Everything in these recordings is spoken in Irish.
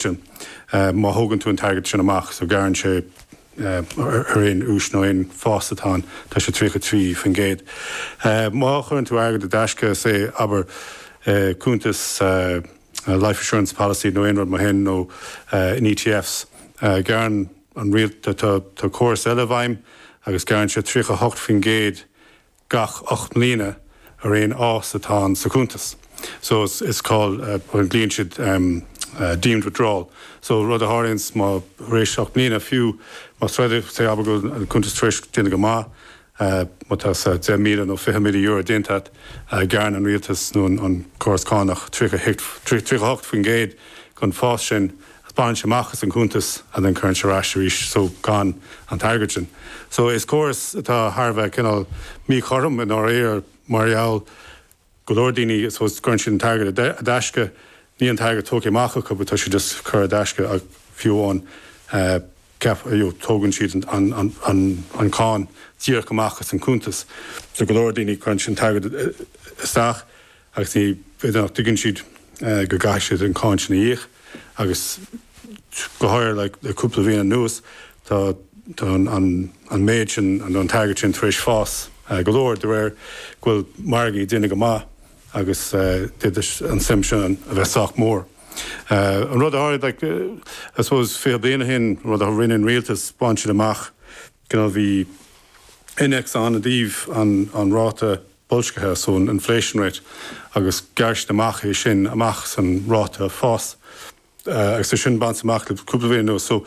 sin. Má thógann tú an t-airgead sin amach, so gearrann sé ar aon úis nó aon fhás atá ann, tá sé tríocha trí faoin gcéad. Má chuireann tú airgead i dtaisce, say, abair, i gcuntas life assurance policy nó aon rud mar shin nó in ETFs, gearrann an rialtas, tá córas eile i bhfeidhm agus gearrann sé tríocha hocht faoin gcéad gach ocht mbliana ar aon fhás atá ann sa chuntas so is cineál glaonn siad deemed withdrawal so rud a tharlaíonns má tar éis ocht mbliana fiú más rud é say abair go bhfuil an cuntas tar éis déanamh go maith a's tá say deich míle nó fiche míle euro déanta a't gearrann an rialtas nó an córas cánach tríocha hocht faoin gcéad den fás sin bainte amach as an gcuntas and then cuireann sé é ar ais arís so gan an t-airgead sin. So is córas atá thar a bheith cineál míchothrom i ndáiríre mar gheall go leor daoine I suppose cuireann siad an t-airgead I dtaisce, níl an t-airgead tógtha amach acu but tá sé just curtha i dtaisce ach fiú amháin you know tógann siad an an cháin díreach amach as an gcuntas so go leor daoine cuireann siad an t-airgead isteach agus b'fhéidir nach dtuigeann siad go gcaithfidh siad an cháin sin a íoc agus go háirithe le cúpla bliain anuas tá an méid sin nó an t-airgead sin tar éis fás go leor de réir go bhfuil margaí ag déanamh go maith agus d'fhéadfadh an tsuim sin a bheith sách mór. An rud a tharla I suppose 20 bliain ó shin, an rud a rinne an rialtas, bhain siad amach, Cineál bhí innéacs ann i dtaobh an ráta boilscithe, so an inflation rate, agus ghearr siad amach é sin amach san ráta fás agus tá sé sin bainte amach le cúpla bliain anuas. So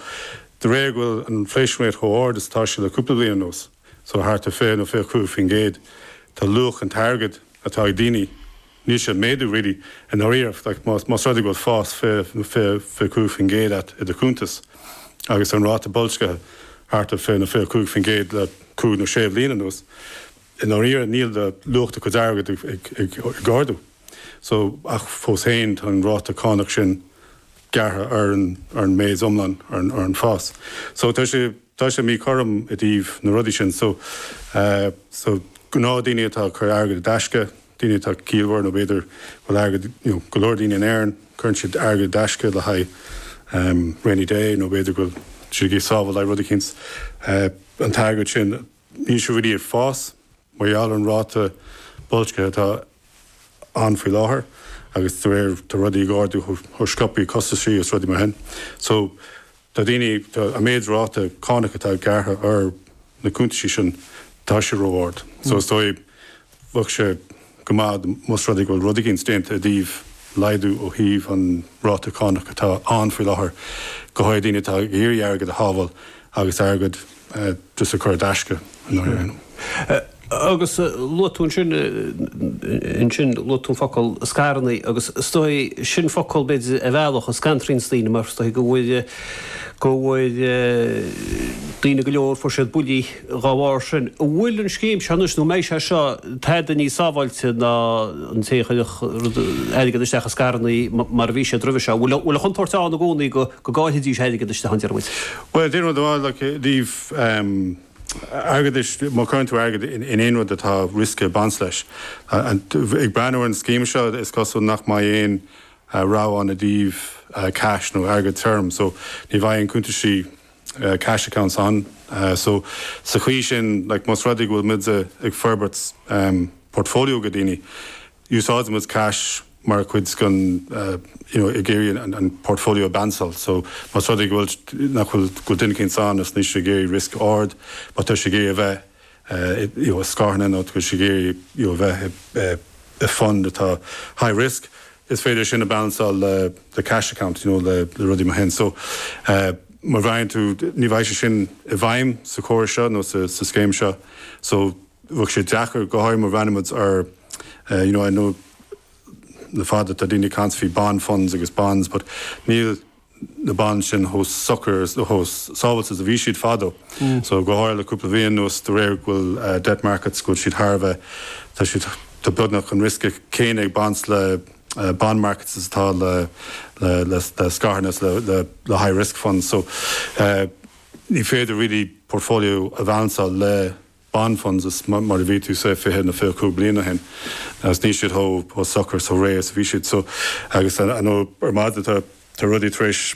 de réir go bhfuil an inflation rate chomh ard is atá sé le cúpla bliain anuas, so thart ar 20 nó 25 faoin gcéad, tá luach an t-airgead atá ag daoine, níl sé ag méadú really i ndáiríre like más más rud é go bhfuil fás 20 nó 20 25% a't i do chuntas agus tá an ráta boilscithe thart ar 20 nó 25% le cúig nó sé bhliain anuas i ndáiríre níl luach do chuid airgead ag ag ag ag ardú so ach fós féin tá an ráta cánach sin gearrtha ar an ar an méid iomlán ar an ar an fás so tá sé Tá sé míchothrom i dtaobh na rudaí sin. So, so, gnáthdhaoine atá ag cur airgead i dtaisce, daoine atá ciallmhar nó b'fhéidir go bhfuil airgead, you know, go leor daoine in Éirinn, cuireann siad airgead i dtaisce le haghaidh, um, rainy day nó b'fhéidir go bhfuil siad ag sábháil le haghaidh rud eicínt. Eh, an t-airgead sin, Níl sé i ndáiríre ag fás mar gheall ar an ráta boilscithe atá ann faoi láthair agus de réir, tá rudaí ag ardú chomh sciobtha, costaisí agus rudaí mar sin. So, tá daoine, tá an méid ráta cánach atá gearrtha ar na cuntaisí sin, tá sé ró-ard. So, is dóigh, bheadh sé go maith más rud é go bhfuil rud éigin déanta i dtaobh laghdú ó thaobh an ráta cánach atá ann faoi láthair, go háirithe daoine atá ag iarraidh airgead a shábháil agus airgead just a chur i dtaisce i ndáiríre. Hm. Agus luaigh tú ansin, ansin luaigh tú an focal scaireanna agus is dóigh, sin focal b'fhéidir a mheallfadh, a scanraíonn daoine mar is dóigh go bhfuil, go bhfuil daoine go leor, fuair siad buillí, Dá bharr sin, an bhfuil an scéim seo anois, nó an mbeidh sé seo tada níos sábháilte ná an té a chuirfeadh rud, airgead isteach i scaireanna mar a bhí siad roimhe seo? An bhfuil an chontúirt ann i gcónaí go gcaillfidís airgead isteach, an ndeir muid? Bhuel, aon rud ó thaobh airgeadais, má chuireann tú airgead in aon rud atá riosca ag baint leis. Ag breathnú ar an scéim seo, is cosúil nach mbeidh aon rogha ann i dtaobh cash nó airgead tirim, so ní bheidh aon cúntaisí, cash accounts ann so sa chaoi sin like más rud é go bhfuil muid ag forbairt portfolio do dhaoine úsáideann muid cash mar chuid den you know ag iarraidh an portfolio a bhalansáil so más rud é go bhfuil nach bhfuil go bhfuil duine éicint ann is níl sé ag iarraidh risk ard má tá sé ag iarraidh a bheith ii, scaireanna nó tá sé ag iarraidh, ii, a bheith i bhfund atá high risk is féidir sin a bhalansáil le cash account nó le rudaí mar sin so má bhreathnaíonn tú ní bheidh sé sin i bhfeidhm sa chóras seo nó sa scéim seo so bheadh sé deacair go háirithe má bhreathnaíonn muid ar you know I know le fada tá daoine ag caint faoi bond funds agus bonds but níl na bonds sin chomh socair is, nó chomh sábháilte is a bhí siad fadó. So, go háirithe le cúpla mhí anuas, de réir go bhfuil debt markets, go bhfuil siad thar a bheith, tá siad, tá beagnach an riosca céanna ag baint le bond markets is atá le, le, le, le scaireanna is le, le, le high risk funds. So, ní féidir really portfolio a bhailansáil le. bond funds is mar a bhí tú say fiche nó fiche a cúig bliana ó shin agus níl siad chomh socair agus réidh is a bhí siad so agus I know ar maidin tá rudaí tar éis